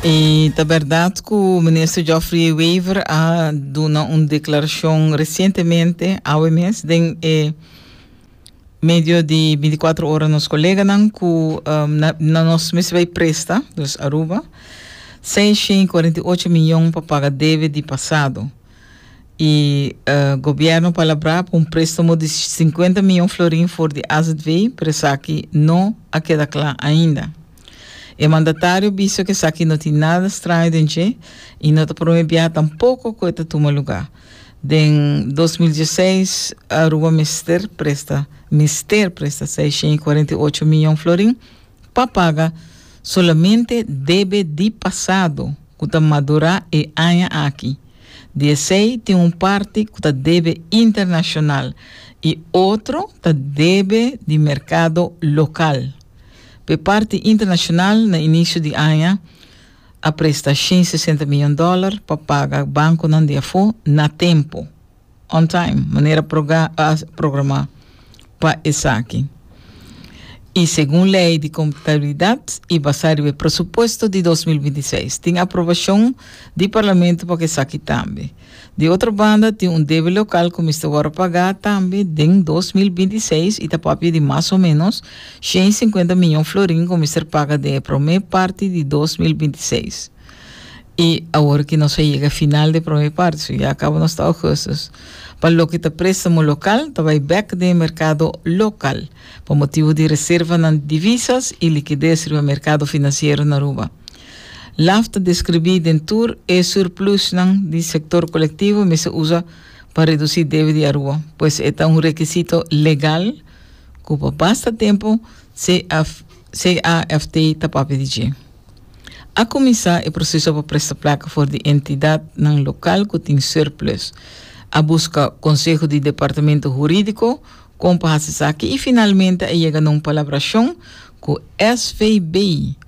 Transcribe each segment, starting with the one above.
E ta berdad cu minister Geoffrey Wever a duna un declaracion recientemente, awe mes, den e medio di 24 horas nos coleganan cu um, na, na nos mes bay presta, dus Aruba, 648 miljoen pa paga debe di pasado. Y uh, gobierno palabra pa un préstamo di 50 miljoen florin for di AZV, pero esaki no a keda cla ainda. E mandatario bisa ku esaki no tin nada straño den dje i no ta promé biaha tampoko ku e ta tuma lugá. Den dos mil dieseis Aruba mester presta mester presta seisciento y cuarenta y ocho mion florin pa paga solamente debe di pasado ku ta madurá e aña aki. Di esei tin un parti ku ta debe internashonal i otro ta debe di merkado lokal. P'e parti internashonal, na inisio di aña a presta shen sesenta miyon dòler pa paga bankonan di afó na tempu, on time, manera proga a programá pa esaki i segun lei di kontabilidat i basá riba e presupuesto di dos mil binti seis. Tin aprobashon di Parlamento pa ku esaki tambe. Di otro banda tin un debe local cu mester worde pagá tambe den dos mil binti i seis i ta papia di mas o menos shen i sinkuenta miñon florin cu mester paga den e prome parti di dos mil binti i seis. I awor ki nos a yega e final dje prome parti, so ya cabo nos ta augustus, pa loke ta prestamo local ta bay bek den e mercado local pa motibo di reservanan di divisas i likides riba mercado financiero na Aruba. Laf ta describí den tur e surplusnan di sector colectivo mester usa pa reducí debe di Aruba, pues e ta un requisito legal cu pa basta tempo CAFT ta papia di dje. A cuminsá e proceso pa presta placa for di entidadnan local cu tin surplus. A busca conseho di Departamento Huridico Kon pa hasi esaki? I finalmente a yega na un palabrashon ku SVB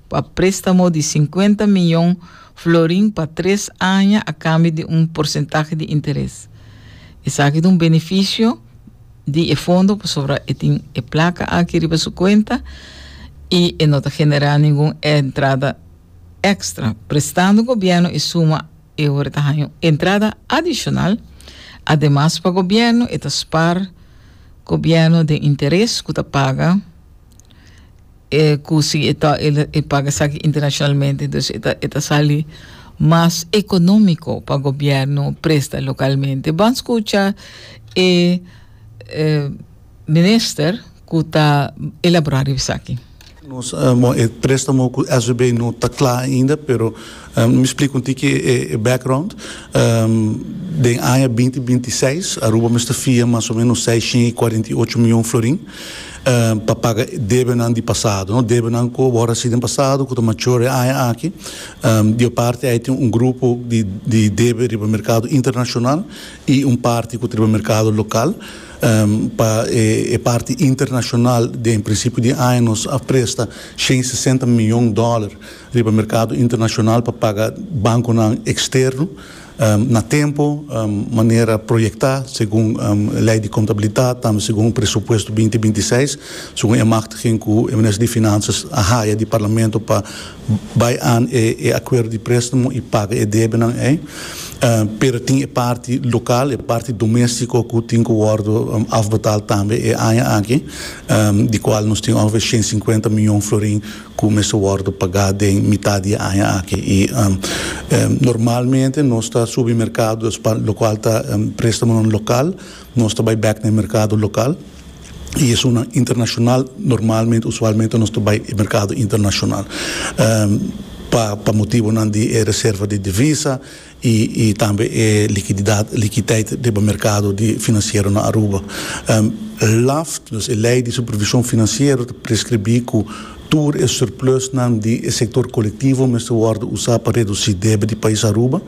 pa préstamo di sinkuenta miyon florin pa tres aña a kambio di un porsentahe di interes. Esaki ta un benefisio di e fondo pasobra e tin e plaka aki riba su kuenta i e no ta generá ningun entrada èkstra, prestando gobièrnu e suma. E ora ta haña un entrada adishonal. Ademas pa gobièrnu e ta spar gobièrnu den interes ku ta paga e ku si e ta e paga esaki internashonalmente dus e ta e ta sali mas ekonómiko pa gobièrnu presta lokalmente. Ban skucha e e. Minister cu ta elabora riba esaki. Nos e prestamo cu SVB no ta cla ainda pero mi splica un tiki e background. Den aña binti binti i seis Aruba mester fia mas o menos seiscientos i cuarenta i ocho mion florin pa paga debenan di pasado, debenan cu awor a hasi den pasado cu ta mature e aña aki. Di e parti ei tin un grupo di debe riba mercado internacional i un parti cu ta riba mercado local. Pa e parti internashonal den prinsipio di aña nos a presta shen sesenta miyon dòler riba merkado internashonal pa paga bankonan eksterno na tempo manera proyektá segun lei di kontabilidat tambe segun presupuesto binti binti seis segun e machtiging ku e Minister di Finanzas a haya di Parlamento pa Bai an e e akuerdo di préstamo i paga e debenan ei, pero tin e parti lokal, e parti doméstiko ku tin ku wòrdu afbetal tambe e aña aki, di kual nos tin ongefé shen sinkuenta mion florin ku mester wòrdu pagá den mitat di e aña aki. I normalmente nos ta subi merkado, lokual ta préstamonan lokal. Nos ta bai bek na e merkado lokal i esunnan internashonal, normalmente, usualmente, nos ta bai e merkado internashonal pa pa motibonan di e reserva di divisa i i tambe e likididat, likiteit riba merkado di finansiero na Aruba. LAFT, dus e lei di supervishon finansiero ta preskribí ku. Tur e surplusnan di e sector colectivo mester wordo usa pa reduci debe di pais Aruba.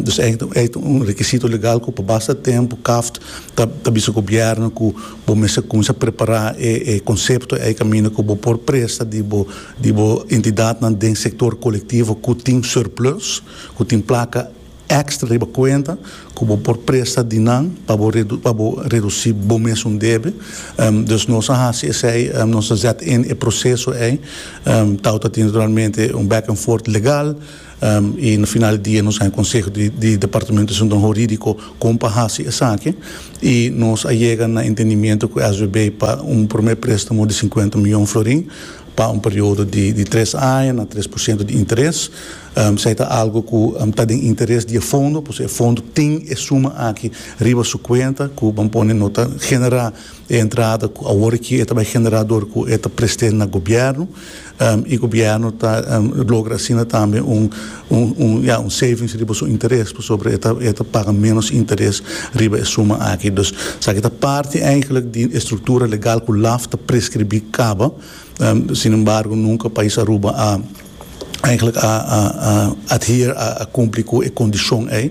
Dus ey ta un requisito legal cu pa basta tempo CAFT ta bisa gobierno cu bo mester cuminsa prepara e concepto ey caminda cu bo por presta di bo entidadnan den sector colectivo cu tin surplus, cu tin placa. Extra riba cuenta cu bo por presta di nan pa bo pa bo reduci bo mesun debe. Dus nos a haci esey, nos ta zet in e proceso ey. Tau ta tin naturalmente un back and forth legal y na final di dia nos haña conseho di di departamento asuntonan huridico con pa haci esaki y nos a yega na entendimiento cu SBB pa un primer prestamo di cincuenta miyon florin. pa un periodo di tres aña na tres por ciento di interes, esei ta algo cu ta den interes di e fondo, pues e fondo tin e suma aki riba su cuenta cu ban pone no ta genera e entrada cu awor e kier e ta bay genera dor cu e ta preste na gobierno y gobierno ta logra asina tambe un. Un, ya, un savings riba su interes, pasobra e ta paga ménos interes riba e suma aki. Dus, esaki ta parti eigenlijk di e struktura legal ku laf ta preskribí kaba. Sinembargo, nunka Pais Aruba a, eigenlijk a, a, a adhere, a, a kumpli ku e kondishon ei.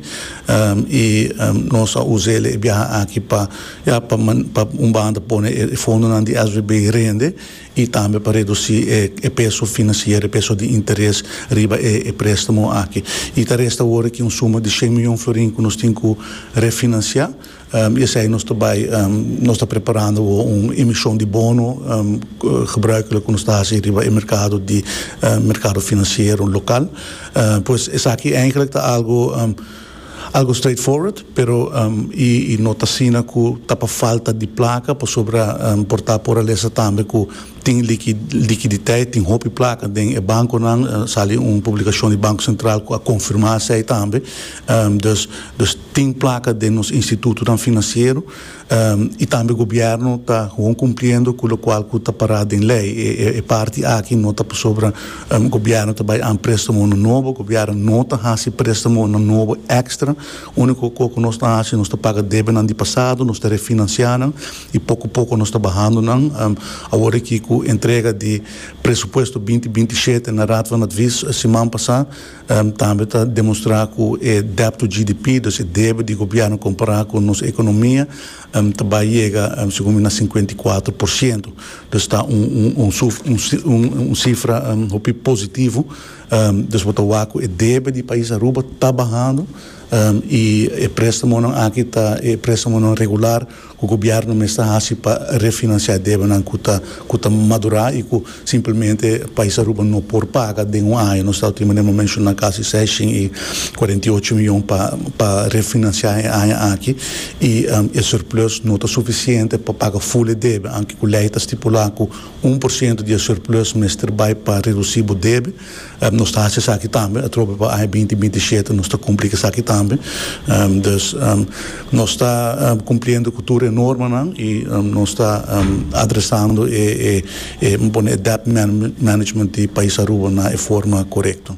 I nos a usa el e biaha aki pa, ya, pa, pa un banda pone e fondonan di SVB rende. y tambe pa reduci e peso financiero, e peso di interes riba e prestamo aki. Y ta resta awor aki un suma di cien miyon florin cu nos tin cu refinancia y esai nos ta bay, nos ta preparando awor un emision di bono gebruikelijk cu nos ta haci riba e mercado di mercado financiero local. Pues esaki eigenlijk ta algo. Algo straightforward, pero i no ta asina ku ta pa falta di plaka, pasobra por ta poralesa tambe ku tin likiditeit, tin hopi plaka den e bankonan, a sali un publikashon di Banko Sentral ku a konfirmá esei tambe. Dus tin plaka den nos institutonan finansiero. y tambe gobierno ta gewoon cumpliendo cu locual cu ta para den ley. E parti aki no ta pasobra gobierno ta bay aan prestamonan nobo, gobierno no ta haci prestamonan nobo extra, unico co cu nos ta haci nos ta paga debenan di pasado, nos ta refinancia nan y poco poco nos ta bahando nan. Awor aki cu entrega di presupuesto binti binti shete na Raad van Advies siman pasa, Tambe ta demostrá ku e dèpto GDP, dus e debe di gobièrnu kompará ku nos ekonomia, ta bai yega segun mi na sinkuenta i kuatro por siento. Dus ta un sifra hopi positivo. Dus bo ta wak ku e debe di pais Aruba ta bahando i e préstamonan aki ta e préstamonan regular. Cu gobierno mester haci pa refinancia debanan cu ta cu ta madura y cu simplemente Pais Aruba no por paga den un aña? Nos ta tima den momen shuna casi sescien y cuarenta y ocho miyon pa pa refinancia e aña aki y e surplus no ta suficiente pa paga full e debe, anke cu ley ta stipula cu un por ciento di e surplus mester bay pa reduci bo debe. Nos ta haci esaki tambe atrobe pa aña binti binti shete, nos ta cumpli cu esaki tambe. Dus, nos ta cumpliendo cu tur e normanan y nos ta adresando e e pone e debt management di pais Aruba na e forma corecto.